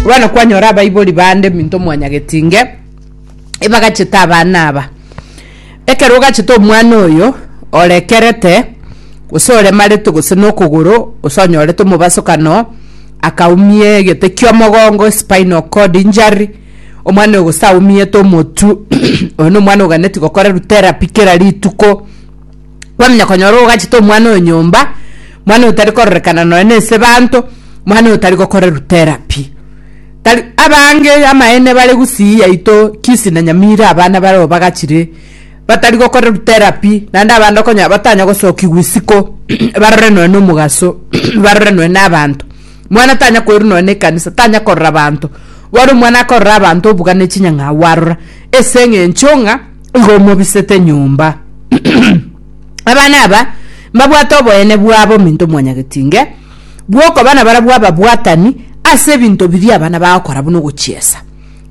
bono kwanyora abaibori bande minto mwanyagetinge ebagachete abana aba ekero ogachete omwana oyo orekerete gose oremarete gose nokogoro gose onyorete omobasokano akaumia egete kia omogongo spinal cord injury omwana oyo gose aumiete omotu oyo nomwana oganeti gokorerwa therapy kera rituko. kwamenya konyora ogachete omwana oyo nyomba, mwana oyo tari kororekana nonya na ase abanto, mwana oyo tari gokorerwa therapy. Tari abange amaene bare gusii yaito kisi na nyamira abana bareo bagachire batari gokorerwa therapy naende abande okonyora batanya gosokigwa isiko barore nonya na omogaso barore nonya na abanto. Mwana tanya koirwa nonya na ekanisa, tanya korora abanto, bono omwana akorora abanto obuga ne chinyang'au arora ase eng'encho ng'a. igo omobisete nyomba. Abana aba mbabwate oboyene bwabo ominto omwanyagetinge bw'okoba nabarabwo ababwatani ase ebinto biria abana bagokora buna ogochiesa.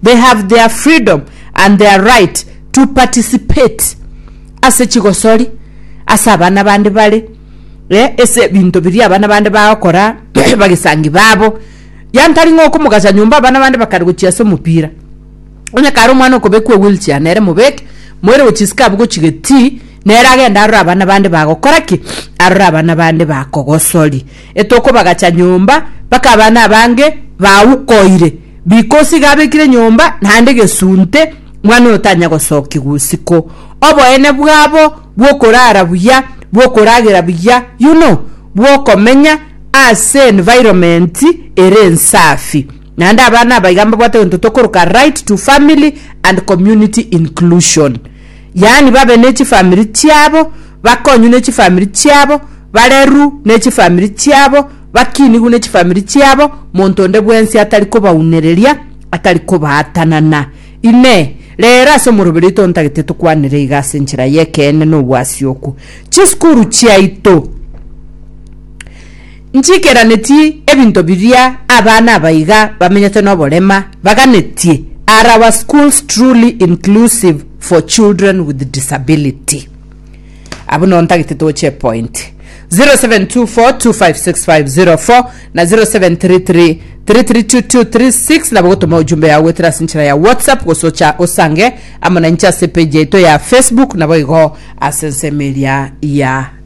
They have their freedom and their right to participate ase chigosori ase abana bande bare eh, ase ebinto biria abana bande bagokora bagesangi babo. Yantari ng'a okomogasa nyomba abana bande bakare gochiesa omopira. Onye kare omwana okobekwa ewheelchair nere mobeke, moire gochisikaa abwo gochia getii, nere agende arore abana bande bagokora ki? Arore abana bande bakogosoria. Etokobagacha nyomba mpaka abana abange baukoire because iga abekire nyomba naende gesunte mwana oyo tanya gosokigwa usiku. Oboene bwabo bwokorara buya, bwokoragera buya, you know, bwokomenya ase environment ere ensafi. Naende abana aba iga mbabwate gento tokoroka right to family and community inclusion, yaani babe ne chifamiri chiabo, bakonywe ne chifamiri chiabo, barerwu ne chifamiri chiabo, bakinigwe ne chifamiri chiabo, monto onde bwensi atari kobaunereria, atari kobaatanana. Inee! Reero ase omoroberi oito ontagete tokwanere iga ase enchera y'ekeene na obwasioku? Chisukuru chiaito. Nchiikeranetie ebinto biria abana aba iga bamenyete noborema baganetie are our schools truly inclusive for children with disability? Abwo nigo ntagete toche epointi. 0724256504 na 0733332236 nabo gotoma ojumbe yao goetera ase enchera ya whatsapp gose ocha osange amo nainche ase epage yaito ya facebook nabo igo ase ensemo eria ya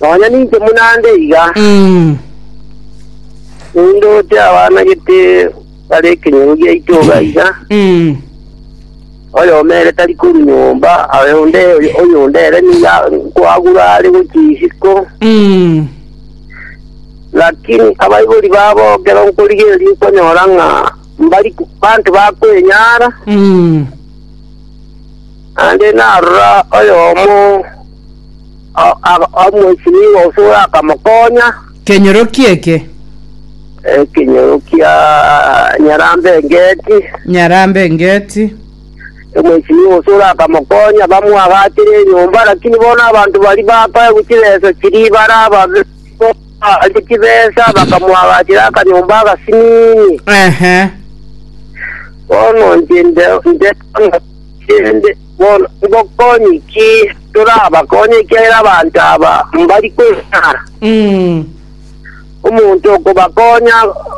Nonya ninche buna ande iga, Mm. nindoche abana gete bare ekenyoro giaito iga iga, Mm. oyoma ere tari koru nyomba, aye onde oyonde ere niga nkwagura are gochia isiko, Mm. lakini abaibori babo ekero nkorigereria okonyora ng'a mbari banto bakwenyara, Mm. naende narora oyomo o- o- omoisiniigwa gose orakamokoonya. Kenyoroki eke. Ekenyoro kia Nyarambe Engeti. Nyarambe Engeti. Omoisiniigwa gose orakamokoonya, bamwagaachire enyomba, lakini bono abanto baria bakoegwa chibesa chiria bare ababe, baria chibesa, bakamwagaachera akanyomba agasinini. Ehe. Bono inche nde- nde- chende. Bono ngokonye ki torabakonye ekiagera abanto aba mbari kweng'ara? Omonto okobakonya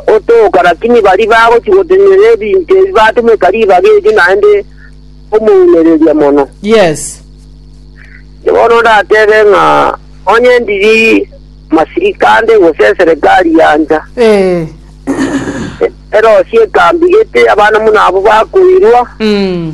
otooka, lakini baria bagochia gotenena ebinto ebi batomeka ribaga erio naende omounereria mono. Yes. Inche bono ndatebe ng'a onye ndiri masirika ande gose eserekari yancha, Eh. erosie ekambi gete abana buna abwo bakoirwa, Mm.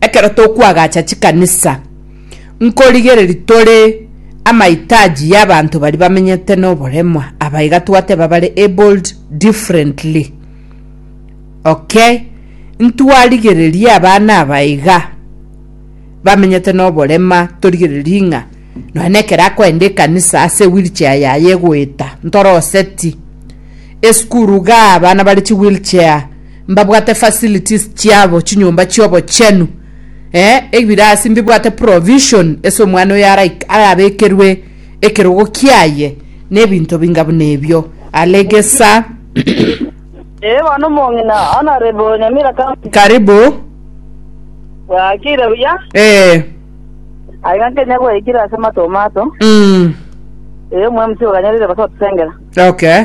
Ekero tokwagacha chikanisa, nkorigereria tore amahitaji y'abanto baria bamenyete noboremo, aba iga twateba bare abled differently. Okay, ntwarigererie abana aba iga bamenyete noborema, torigererie ng'a nonya na ekero akoenda ekanisa ase ewheelchair yaye egoeta, ntore oseti. Esukuru igaa abana bare chiwheelchair. mbabwate facilities chiabo chinyomba chiobochenu eh ebirasi mbibwate provision ase omwana oyo arabekerwe ekerogo kiaye nebinto binga buna ebio alegesa Ee bono omong'ina onare bo Nyamira County. karibu Bwakire buya. eh Aiga Kenya gwaikire ase matomato. mm. Ee omwemsi oganyarire basa otusengera. okay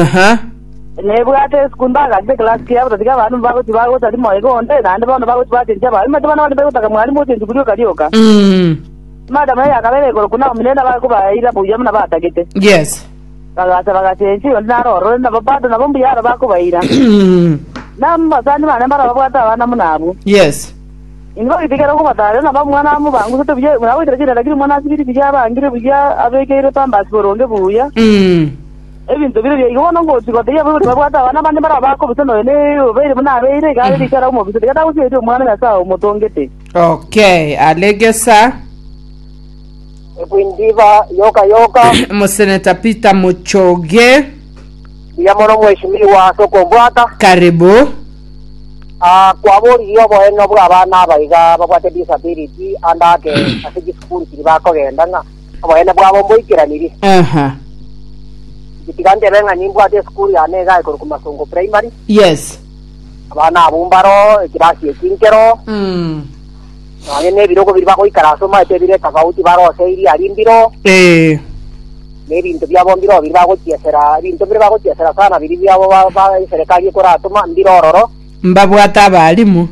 Aha. Nebwate isiko ndagachire ekelasi kiaye batathi ki abanto bagochia bagotari moyo onde, naende bono bagochia bachenchia abarwani baito bana baria begotaka mwarimu ochenchi buru yoka rioka. Mm. Madam eye akaba ere igoro kuna omonene nabo akobaira buya buna batagete. Yes. Bagacha bagachenchia onde naro orore nabo bado nabo mbuya aro bakobaira. Mm. Namosani bane mbaro babwate abana buna abwo. Yes. Inwe abaitikerwa kobatare, nabo omwana amo bangusete buya, buna agoitera chienda, lakini omwana ase biri biya abangire buya, abekeirwe pambasi boronge buya. Ebinto bire biya igo bono ngochi gotebia abwo erio babwate abana abande mbarabwo bakobisa noyo ne obeire buna abeire, iga are riko arakobisa tiga tagosieri omwana Nyasae omotongete. Okay, alegesa. Ekwindiba yoka yoka. Moseneta Peter Muchoge. Mbuya mono mweshimiwa ase okombwata. Karibu. Ah, kwaboririe oboeno bw'abana aba iga babwate disability ande ake ase chisukuru chiria bakogenda ng'a oboene bwabo mboikeranirie. Aha. Inche tiga ntebe ng'a nimbwate esukuru yane iga eye korokwa Masongo Primary, Yes. abana abwo mbaro ekirasi eki nkero, Mm. nonye na ebirogo biria bagoikara ase omanyete ebire tofauti bare ose eria aria mbiro, Eh. nebinto biabo mbire oo biri bagochiesera, ebinto mbire bagochiesera sana biria biabo ba- ba eserekari ekoratoma mbire ororo, Mbabwate abaalimu.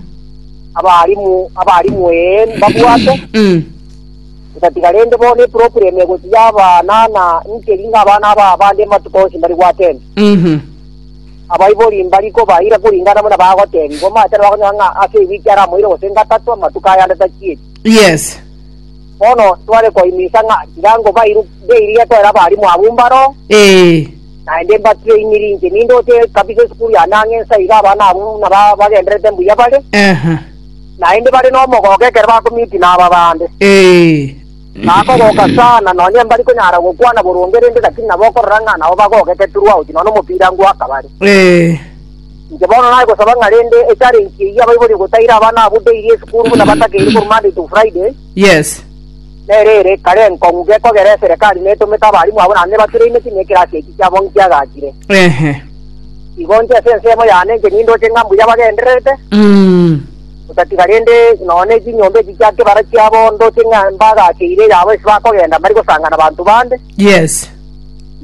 abaalimu abaalimu ee, mbabwate, Mm. ntatiga rende bono eproblem egoti y'abana na inche ring'o abana aba abande amatuko onsi mbari gwatenti. Mhm. abaibori mbari kobaira kuringana buna bagotebigwa matera bakonyora ng'a ase ewiki aramoire gose ngatatu amatuko ayande tachieti Yes. Bono tware koinisa ng'a tiga ngo bairu ndeirie koera abarimu abwo mbaro, Ee. naende mbatrainire inche. Nindoche kabisa esukuru yane ang'e ense iga abana abwo buna ba- bagendererete mbuya bare, Aha. naende bare nomogogo ekero bakomiiti naba bande. Ee. Bakogoka sana, nonya mbari konyara gokwana boronge rende, lakini nabo okorora ng'a nabo bagogete throughout, nonya omopira ngwakabare. Ee. Inche bono nagosaba ng'a rende e challenge eyio abaibori gotaira abana abwo daily esukuru buna batakeire korwa Monday to Friday, Yes. nere ere kare enkong'u gekogera eserekari netomete abarimu abwo naende nebatraineti na ekerasi ekio kiabo nkiagachire. Ehe. Igo inche ase ensemo yane inche nindoche ng'a mbuya bagendererete, Mm. otatiga rende nonya ne chinyomba echi chia kebara chiabo ndoche ng'a mbagacheire yabo ase bakogenda mbari gosangana na banto bande, Yes.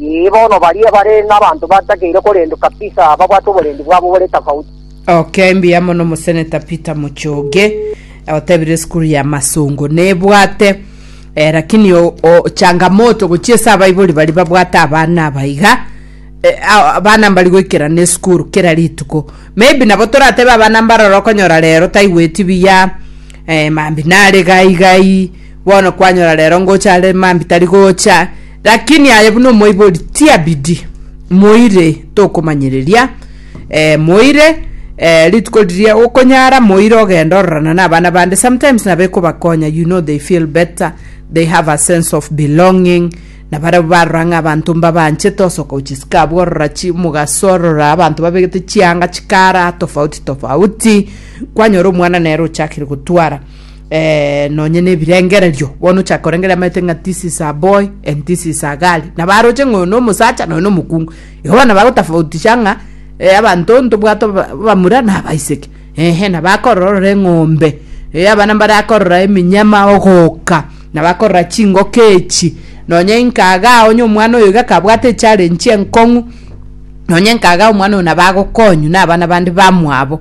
Ee, bono baria bare n'abanto batakeire korendwa kabisa babwate oborendi bwabo bore tofauti. Okay, mbuya mono omoseneta Peter Muchoge eh, otebire esukuru ya Masongo nebwate eh, lakini o, o, changamoto gochia ase abaibori bari babwate abana abaiga eh, a- abana mbari goikerana esukuru kera rituko maybe nabo toratebe abana mbarora okonyora rero taigweti biya eh, mambi nare gai gai Bono kwanyora rero ngocha are mambi tari gocha, lakini aye buna omoibori tia bidii. Moire tokomanyereria eh, moire eh, rituko riria okonyara moire ogenda ororana na abana bande sometimes nabo ekobakonya you know they feel better they have a sense of belonging na barabwo barora ng'a abanto mbabanchete osoka ochisika abwo orora chi omogaso orora abanto babegete chianga chikara tofauti tofauti kwanyora omwana nere ochakire gotwara eh, nonye nebirengererio bono ochaka korengeria amaete ng'a this is a boy and this is a girl na baroche ng'oyo no omosacha noyo no omokungu igo bono bagotafautisha ng'a eh, abanto ntobwate bamura na abaiseke ehe na bakorora eng'ombe eh, abana mbare akorora eminyama ogoka na bakorora chingoka echi nonye inkaga onye omwana oyo iga kabwate echallenge enkong'u nonye nkaga omwana oyo nabagokonyu na abana bande bamwabo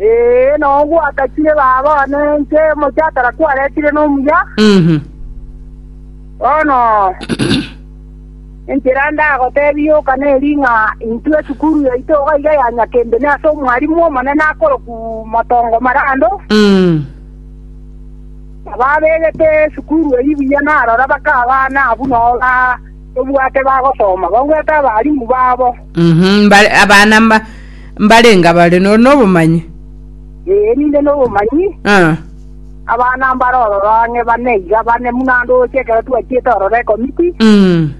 Ee, nao gwakachire baba one inche omochakara kwaretire nomuya, Mhm. bono enchera ndagotebia yoka neri ng'a intwe esukuru yaito iga iga ya Nyakembe ne ase omwarimu omonene akoroku Motongo Marando, Mm. ababegete esukuru eyio buya narora bakabana abwo nao ba tobwate bagosoma, bagwete abarimu babo. Mhm, mba- abana mba- mbarenga bare no- nobomanyi Ee, ninde n'obomanyi, Ah, abana mbare ororo ang'e bane iga bane buna ndoche ekero twachiete ororo ekomiti, mm,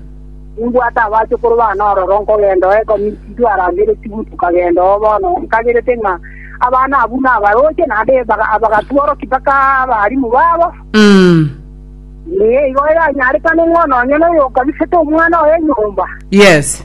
nimbwate abachukuru bane ororo nkogenda oo ekomiti twarangereti buna tukagenda oo bono nkagerete ng'a abana abwo nabaroche naende baga- abagatworoki mpaka abarimu babo mm. Ee, igo yanyarekane ng'a nonye noyo okabisete omwana oye nyomba yes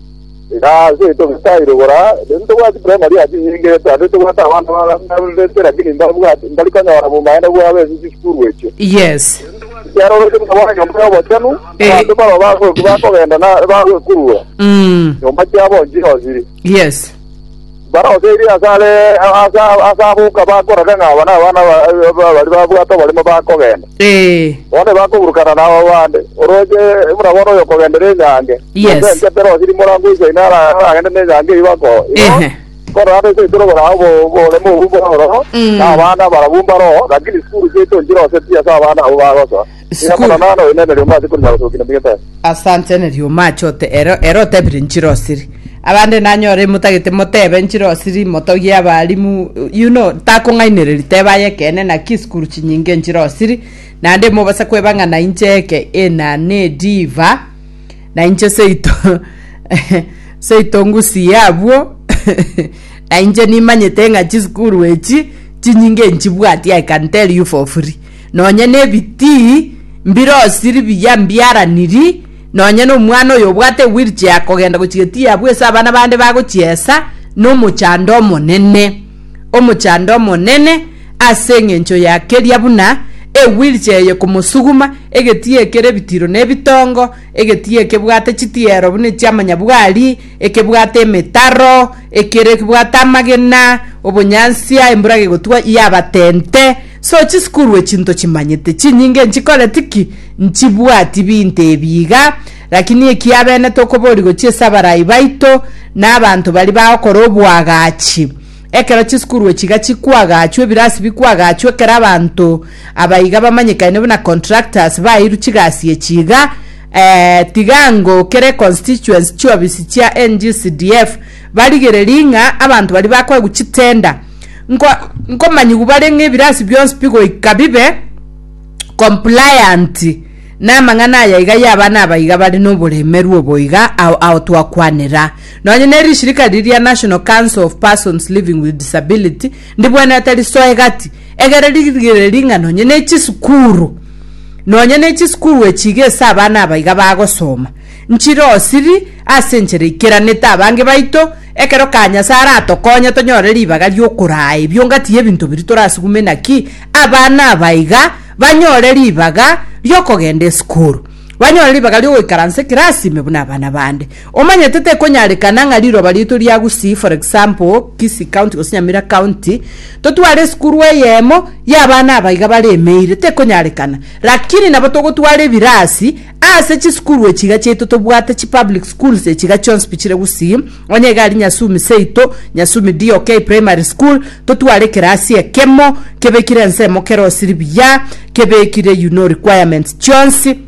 Iga ase togetae rogora, rende tobwati primary ase enyinge eto, naende tobwate abana babererete lakini mbabwati mbari konyora bomaene bwabo ase chisukuru echio. Yes. Ekiagera oroche buna bono nyomba ya obochenu, Eh. abanto baroo bago- bakogenda na bagoekurura, Mm. nyomba chiabo nchirochiri. Yes. Mbaroseirie ase are ase aboka bakorore ng'a aba nabana baria babwate oborimo bakogenda. Ee. Bono tibakoburukana nabo bande. Oroche buna bono oyokogendera enyange, Yes. gose ense terose rimoro angwe isaino ara- aragende nenyange eyio bako. Ehe. Korora ande ense tore korao obo- oboremu obwo bore ororo, Mm. na abana barabwo mbaro oo, lakini sukuru chiaito nchiroseti ase abana abwo bagosoa. Ng'a mono Sikuru. naro inene rioma ase korinya gosokina ndigete. Asante ne rioma achote ero ero otebire nchirosiri abande nanyore motagete motebe nchirosiri motogie abalimu you know takong'ainereri tebe aye ekeene naki sukuru chinyinge nchirosiri naende mobasa kweba ng'a nainche eke ena nediva nainche seito seito ngusie abwo nainche nimanyete ng'a chisukuru echi chinyinge nchibwati I can tell you for free nonya nebitii mbirosiri biya mbiaraniri, nonya nomwana oyo obwate ewheelchair akogenda gochia gati yabwo ase abana bande bagochiesa, nomochando omonene, omochando omonene ase eng'encho ya keria buna ewheelchair eye komosuguma, egetii ekere ebitiro na ebitongo, egetii ekebwate chitiero buna echia amanyabwari, ekebwate emetaro, ekere ekebwate amagena, obonyansia, embura gegotwa yabatente. So chisukuru echi ntochimanyete, chinyinge nchikoreti ki? Nchibwati binto ebi iga, lakini ekiabene tokobori gochia ase abarai baito na abanto baria bagokora oboagachi. Ekero chisukuru echi iga chikoagachwa, ebirasi bikoagachwa, ekero abanto aba iga bamanyekaine buna contractors baeirwe chigasi echi iga, ee, tiga ngokere constituency chiobisi chia NGCDF barigererie ng'a abanto baria bakoegwa chitender, Nko- nkomanyigwa bare ng'a ebirasi bionsi bigoika bibe compliant namang'ana aya iga y'abana aba iga bare noboremerwa obo iga ao, ao twakwanera nonye ne rishirika riri ria national council of persons living with disability ndibwenerete risoa egati egere rigere ring'a nonye ne chisukuru nonye ne chisukuru echiga ase abana aba iga bagosoma Nchirosiri ase enchera eikeranete abange baito, ekero ka Nyasae aratokonye tonyore ribaga ri'okoraa ebiongati y'ebinto biria torasugume naki abana aba iga banyore ribaga ri'okogenda esukuru, banyore ribaga ri'ogoikaransa ekirasi ime buna abana bande. Omanyete tekonyarekana ng'a riroba riaito ria Gusii, for example, Kisii County gose Nyamira County, totware esukuru eyemo y'abana aba iga baremeire, tekonyarekana. Lakini nabo togotwara ebirasi Ase chisukuru echiga chiaito tobwate chipublic schools echiga chionsi bichire gusii, onye iga aria Nyasumi seito, Nyasumi DOK Primary School, totware ekerasi ekemo kebekire ensemo kere osiri buya, kebekire you know requirements chionsi,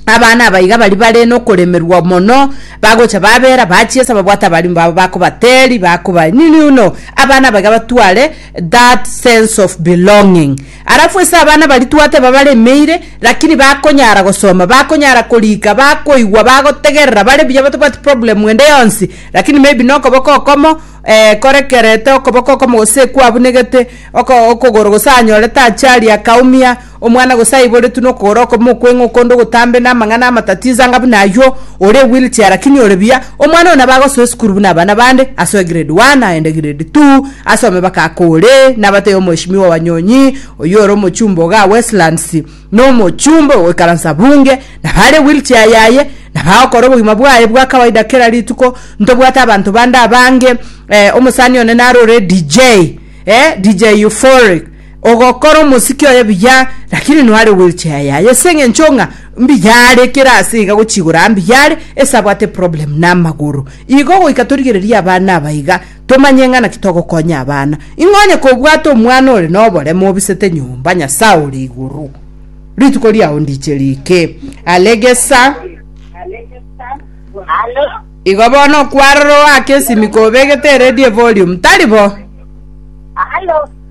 abana aba iga baria bare nokoremerwa mono, bagocha babera bachiesa babwate abalimu babo bakobateri, bakoba nini you know, abana aba iga batware that sense of belonging. Alafu ase abana baria twateba baremeire lakini bakonyara gosoma, bakonyara korika, bakoigwa, bagotegerera, bare buya batabwati problem ende yonsi lakini maybe na okoboko okomo eh korekerete okoboko okomo gose kwabunegete oko okogoro gose anyorete achali akaumia, omwana gose aiboretwe na okogoro okomo okweng'o okonde ogotambe na amang'ana amatatizo anga buna aywo, ore ewheelchair lakini ore buya. Omwana oyo nabo agosoa esukuru buna abana bande, asoe grade one aende grade two, asome baka akore, nabatebia omheshimiwa Wanyonyi, oyio ore omochumba ogaa Westlands, na omochumba ogoikaransa bunge, na bare wheelchair yaye, na bagokora obogima bwaye bwa kawaida kera rituko, ntobwate abanto bande abange, eh, omosani one narore DJ, eh, DJ Euphoric, Ogokora omosiki oye buya, lakini noare wheelchair yaye ase eng'encho ng'a mbuya are, kera ase iga gochigora mbuya are, ase abwate problem na amagoro. Igo goika torigererie abana aba iga, tomanye ng'a naki togokonya abana. Ing'o onye kobwate omwana ore noboremo obisete nyomba, Nyasae ore igoro, rituko riao ndiche riike. Alegesa. Igo bono okwarora oake esimiko obegete eredio evolume, tari bo?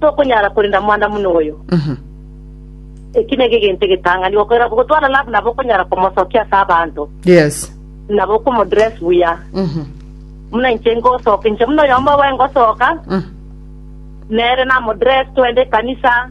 tokonyara korenda mwana buna oyo. Eki nigo egento egetang'ani, gokorera gotwara love nabo okonyara komosokia ase abanto, Yes. nabo okomodress buya. Mhm. Buna inche ngosoka, inche buna oyomo oboe ngosoka, Mhm. nere namodress twende ekanisa,